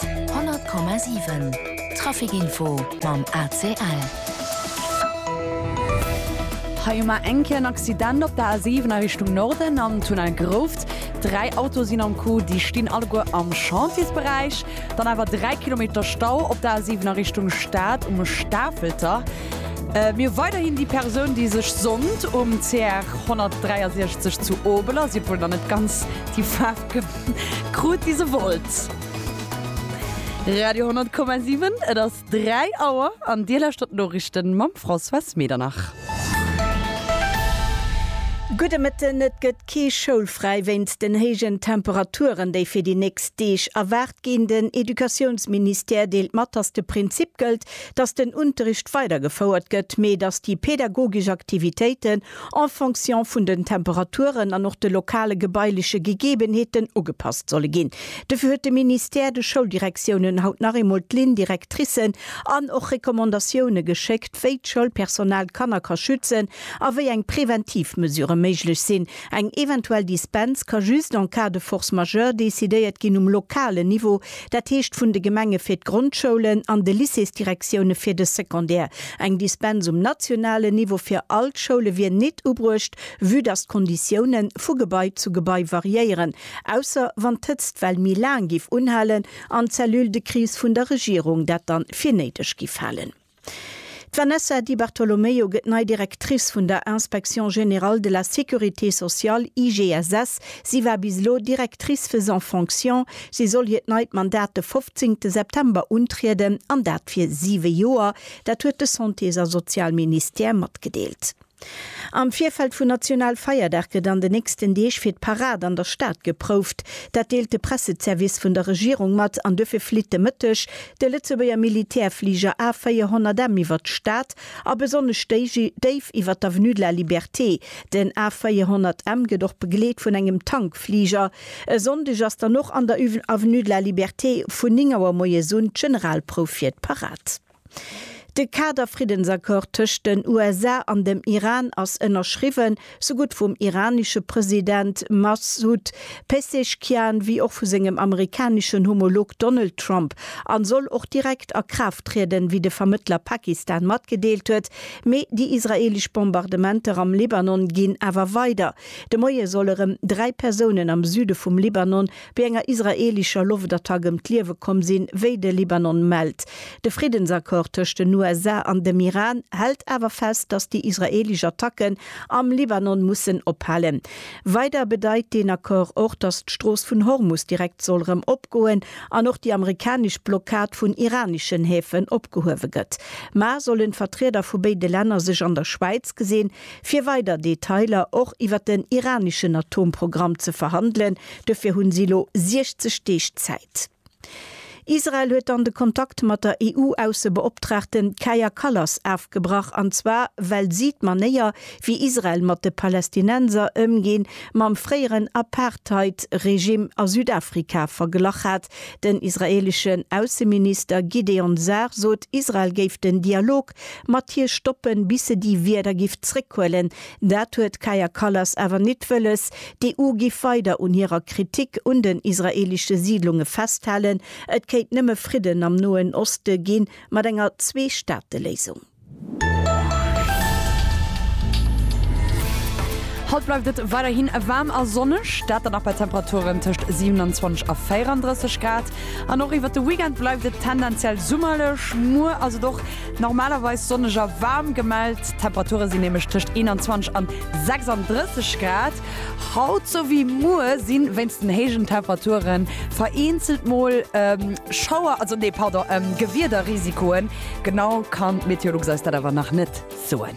100,7 Trafic Info mam ACL. Hei hu mer eng Kéier en Accident op der A7 a Richtung Norden am Tunnel Grouft. Dräi Autoe sinn am Coup, déi stinn alleguer am Chantiersberäich. Dann awer dräi Kilometer Stau op der A7 a Richtung Stad um Stafelter. Mir hu weiderhin déi Persoun, déi sech sonnt um CR 163 zu Obeler, sief wuel nach net ganz déi Faarf, Krut wie se wollt. Radio 10,7 et ass 3 Auer an Dir lauschtert d'Noriichten mam Françoise Medernach. Gudde Mëtten, Et gëtt kee schoulfräi wéinst den héijen Temperaturen, déi fir déi nächst Deeg erwaart ginn. Den Educatiounsministère deelt mat, datt de Prinzip gëllt, datt den Unterricht weidergefouert gëtt, mee datt déi pedagogesch Aktivitéiten en fonction vun den Temperaturen an och de lokale gebaileche Gegebenheeten ugepasst solle ginn. Dofir huet de Ministère de Schouldirektiounen haut nach eemol d'Lignes directricen an och Recommandatioune geschéckt, wéi d'Schoulpersonal d'Kanner ka schützen a wéi eng preventiv Mesure méiglech sinn. Eng eventuell Dispens ka just en cas de force majeure decidéiert ginn um lokalen Niveau. Dat heescht vun de Gemenge fir d'Grondschoulen an de Lycéesdirektioune fir de Secondaire. Eng Dispens um nationalen Niveau fir all d'Schoule wier nit ubruecht, vue dass d'Konditioune vu Gebai zu Gebai variéieren, ausser wann d'Hëtztwell méi laang giff unhalen an d'Cellule de crise vun der Regierung dat dann fir néideg giff halen. D'Vanessa Di Bartolomeo gëtt nei Directrice vun der Inspection Générale de la Sécurité Sociale, IGSS. Si war bis elo Directrice faisant fonction. Si soll hiert neit Mandat de 15 September untrieden, an dat fir siwe Joer. Dat huet de Santés a Sozialministère matgedeelt. Am Virfeld vun Nationalfeierdag gëtt an de nächsten Deeg fir d'Parad an der Stad geprouft. Dat deelt de Presseservice vun der Regierung mat an duerfir flitt de Mëtteg de Lëtzebuerger Militärfliger A 400M iwwert d'Stad a besonnesch déif iwwert d'Avenue de la Liberté. Den A 400M gëtt och begleet vun engem Tankfliger. E Sonndeg ass dann och an der Avenue de la Liberté vun 9 Auer moies un d'Generalprouf fir d'Parad. De Kader-Friddensaccord tëscht den USA an dem Iran ass ënnerschriwwen, sougutt vum iranesche President Masoud Pezeshkian wéi och vu sengem amerikaneschen Homolog Donald Trump an soll och direkt a Kraaft trieden, wéi de Vermëttler Pakistan matgedeelt huet. Mee déi israeelesch Bombardementer am Libanon ginn awer weider. De Moie soll erëm dräi Persounen am Süde vum Libanon Bei enger israelischer Loftattack ëm d'Liewe komm sinn, wéi de Libanon mellt. De Friddensaccord tëscht den USA an dem Iran hält awer fest, datt déi israelisch Attacken am Libanon mussen ophalen. Weider bedeit deen Accord och, datt d'Strooss vun Hormus direkt soll erëm opgoen an och déi amerikanesch Blockad vun iranischen Häfen opgehuewe gëtt. Mar sollen d'Vertrieder vu béide Länner sech an der Schwäiz gesinn, fir weider Detailer och iwwer den iraneschen Atomprogramm ze verhandelen. Duerfir hunn si elo 60 Deeg Zäit. Israel huet dann de Kontakt mat der EU-Aussebeoptraagte Kaja Kallas afgebrach, an zwar well si d'Manéier, wéi Israel mat de Palästinenser ëmginn, mam fréieren Apartheid-Regime a Südafrika verglach hat. Den israeeleschen Ausseminister Gideon Sa'ar sot, Israel géif den Dialog App mat hir stoppen bis se déi Wierder giff zréckhuelen. Dat huet d'Kaja Kallas awer nit wëlles. D'EU giff weider un hirer Kritik un den israeelesche Siidlunge festhalen. Et kéint nëmme Fridden am Noen Oste gi mat enger Zwee-Staate-Léisung. Haut bleift et weiderhin waarm a sonneg, dat dann nach bei Temperaturen tëscht 27 a 34 Grad. An och iwwert de Weekend bleift et tendenziell summerlech. Muer ass et och normalerweis sonneg a waarm gemellt. D'Temperature sinn nämlech tëscht 21 an 36 Grad. Haut sou wéi muer si wéinst den héijen Temperature vereenzelt mol Schauer, also nee pardon, Gewiederrisikoen. Genau kann d'Meteolux eis dat awer nach net soen.